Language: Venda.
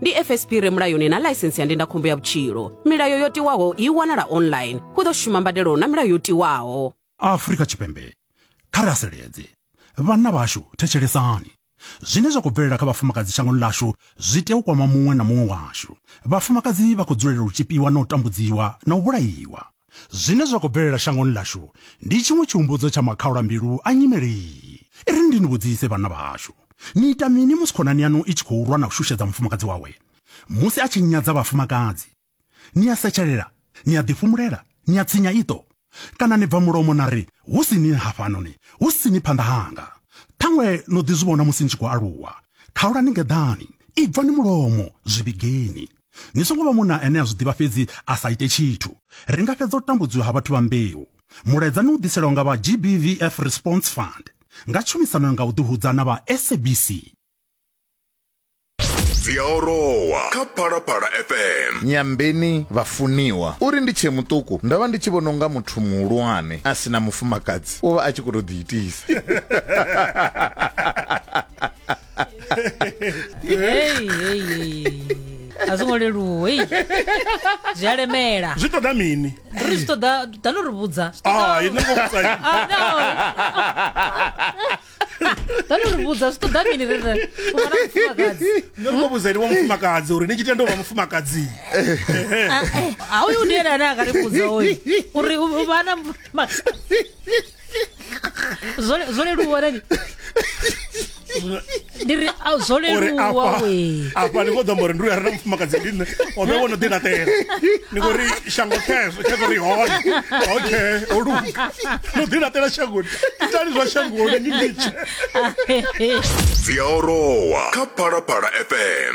ndi fsp re mulayoni na ḽaisensi ya ndindakhombo ya vhutshilo milayo yo tiwaho i wanala online hu ḓo shuma mbadelo na milayo yo tiwaho afrika tshipembe kha ri haseledze vhanna vhashu thetshelesani zwine zwa khou bvelela kha vhafumakadzi shangoni ḽashu zwi tea u kwama muṅwe na muṅwe washu vhafumakadzi vha khou dzulela u tshipiwa na u tambudziwa na u vhulaiwa Zwine zwa khou bvelela shangoni ḽashu ndi tshiṅwe tshihumbudzo tsha makhaulambilu a nyimele iyi. I ri, Ndi ni vhudzise, vhanna vhahashu, ni ita mini musi khonani yaṋu i tshi khou lwa na u shushedza mufumakadzi wawe? Musi a tshi nyadza vhafumakadzi, ni a setshelela, ni a ḓifhumulela, ni a tsinya iṱo, kana ni bva mulomo na ri, Hu si ni hafhanoni, hu si ni phanḓa hanga? Ṱhaṅwe no ḓi zwi vhona musi ni tshi khou aluwa. Khaulani ngeḓani, ibvani mulomo, zwi vhigeni. Ni songo vha munna ane a zwi ḓivha fhedzi a sa ite tshithu. Ri nga fhedza u tambudziwa ha vhathu vha mbeu. Mulaedza ni u ḓiselwa nga vha GBVF Response Fund nga tshumisano nga u ḓihudza na vha SABC. Dzi a orowa kha Phalaphala FM. Nyambeni vhafuniwa. Uri ndi tshee muṱuku ndo vha ndi tshi vhona unga muthu muhulwane a si na mufumakadzi u vha a tshi khou tou ḓiitisa. Hey, hey, hey. a zwo ngo leluwa ei zwi a lemela zwi ṱoḓa mini ri zwi ṱoḓa da no ri vhudza Zwi ṱoḓa- Ah, i no ngo vhudza ini. Ah, no. da no ri vhudza zwi ṱoḓa mini rere u vha na mufumakadzi no ngo vhudza ini wa mufumakadzi uri ni tshi tenda u vha mufumakadzi a uyu ndi ene ane a ka ri vhudza oyu uri u u vha na mufumakadzi zwo zwo leluwa rani ndi ri a zwo uri leluwa afha we afha ni khou ḓo amba uri ndi uya re na mufumakadzi ndi nṋe o vhe wo no ḓi laṱela ni khou ri shango khezwo khezwo ri hone okay o luga no ḓi laṱela shangoni itani zwa shangoni ni litshe dzi a orowa kha phalaphala fm